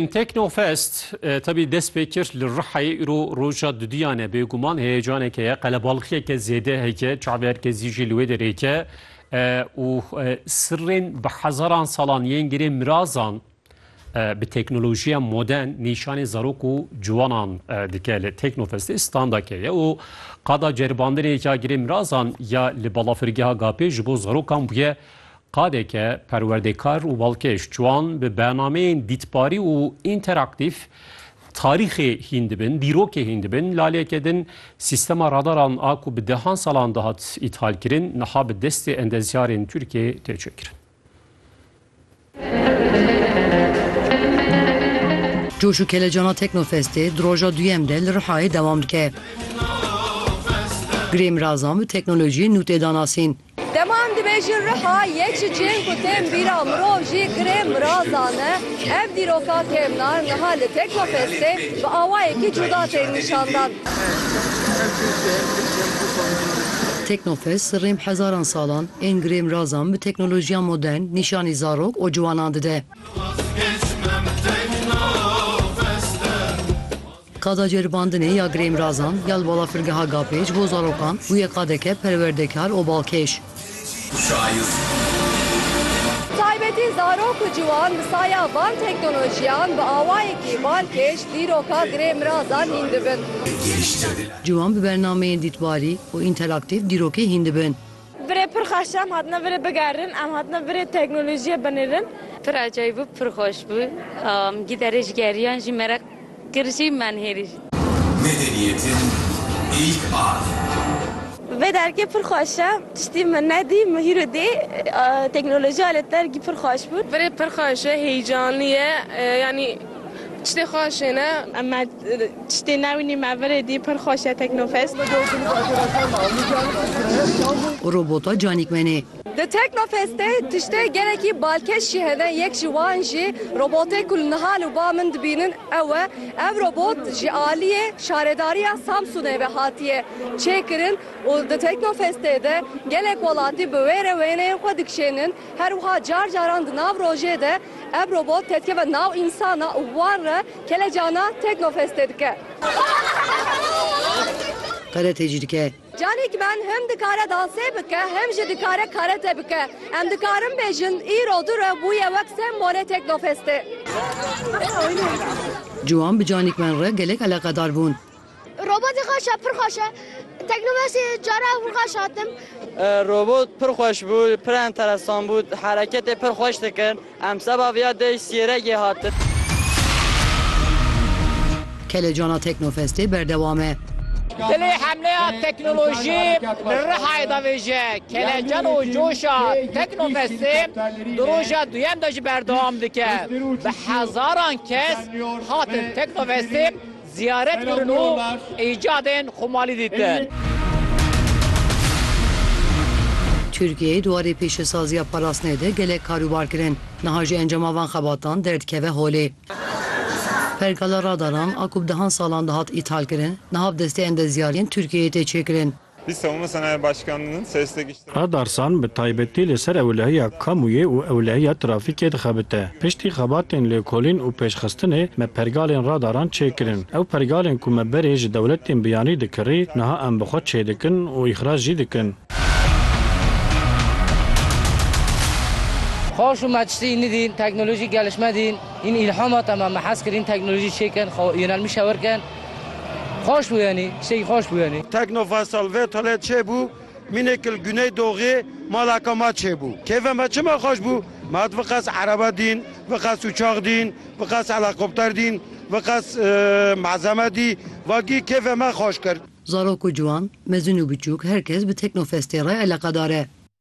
Teknofest tevî dest pê kir li Rihayê îro roja duduyan e. Bêguman heyecaneke ye, qelebalixiyeke zêde heke, çaverkezî jî li wê derê heke û sirrên bi hezaran salan yên girê mirazan bi teknolojiya modern nîşanê zarok û ciwanan dike. Li Teknofestê standeke ye û qada ceribandinê ya girê mirazan ya li balafirgeha Gapê ji bo zarokan bûye Qadeke perwerdekar û balkêş ciwan bi bernameyên dîtbarî û înteraktîf tarîxê hîn dibin, dîrokê hîn dibin. Laleke din sîstema radaran a ku bi dehan salan dihat îthalkirin niha bi destê endezyarên Tirkiyê tê çêkirin. Coş û kelecana Teknofestê di roja duyem de li Rihayê dewam dike. Girê mirazan bi teknolojiyên nûtê danasîn. Dema em dibêjin riha, yek ji cihên ku tên bîra mirov jî kirê mirazan e. Ev dîroka kevnar niha li Teknofestê bi awayekî cuda tên nîşandan. Teknofest rêm hezaran salan ên girê mirazan bi teknolojiya modern nîşanî zarok û ciwanan dide. Qada ceribandinê ya girêmirazan ya li balafirgeha Gapê ji bo zarokan bûye qadeke perwerdekar û balkêş. Bi taybetî zarok û ciwan bi saya van teknolojiyan bi awayekî balkêş dîroka girêmirazan hîn dibin. Ciwan bi bernameyên dîtbarî û înteraktîf dîrokê hîn dibin. Virê pir xweş e, em hatine virê bigerin, em hatine virê teknolojiyê binêrin. Pir acayî bû, pir xweş bû. Em gîdarê ji geriyan jî meraq kir jî man hêrî jî. Medeniyetin ilk adımı. Vê dergê pir xweş e. Tiştî min nedî, min hîro dî. Teknolojiya li dergî pir xweş bû. Virê pir xweş e, heyecanlî ye. Yanî. Tiştê xweş e ne? Me tiştê nebînî me virê dî pir xweş e Teknofest. Û robota canîkmenê. Di Teknofest de tiştê gelekî balkêş jî hene yek ji wan jî robotê ku li niha li ba min dibînin ew e. Ev robot ji aliyê şaredariya Samsûnê ve hatiye çêkirin û di Teknofestê de gelek welatî bi wê re wêneyên xwe dikişênin. Her wiha car caran di nav rojê de ev robot tetkeve nav însanan û wan re kelecanan Teknofest tê dike. Karate jî dike. Canî ki ben him dikare dansê bike him jî dikare karate bike. Em dikarin bêjin îro du re bûye wek sembolê Teknofestê. Ciwan bi Canî ki ben re gelek eleqedar bûn. Robotê xweş e, pir xweş e. Teknomesê cara ew xweş hatim. Robot pir xweş bû, pir enteresan bû, hereketê pir xweş dikin. Em seba viya dê sîregê hatin. Kelecana Teknofestê berdewam e. Dilê hemleya teknolojî li Rihayê de vêje. Kelecan û coşa Teknofestê di roja duyem de jî berdewam dike. Bi hezaran kes hatin Teknofestê Ziyaret kirin û îcadên Xumalî dîtin. Tirkiyeyê di warê pêşesaziya parastinê de gelek karûbar kirin. Niha jî encama van xebatan derdikeve holê. Pergala radaran a ku bi dehan salan dihat îthal kirin, niha bi destê endezyarên Tirkiyeyê tê çêkirin. Adarsan bi taybetî li ser ewlehiya kamûyê û ewlehiya trafîkê dixebite. Piştî xebatên lêkolîn û pêşxistinê me pergalên radaran çê kirin. Ew pergalên ku me berê ji dewletên biyanî dikirî niha em bi xwe çê dikin û îxrac jî dikin. Xweş û maçlî nidîn, teknolojî gelişme dîn. Hîn îlhama te me. Me hez kirîn teknolojî çê kirin, xwe yonelmîşe wir kirin. Xweş bû yanî, tiştekî xweş bû yanî. Tekno Faysal vê tolê çêbû, mînêk li Guneydoxê malaka ma çêbû. Kêfa me çima xweş bû? Me hat viqas erebe dîn, viqas uçax dîn, viqas helekopter dîn, viqas malzeme dî, vagî kêfê me xweş kir. Zarok û ciwan, mezin û biçûk her kes bi Tekno Festê re eleqedar e.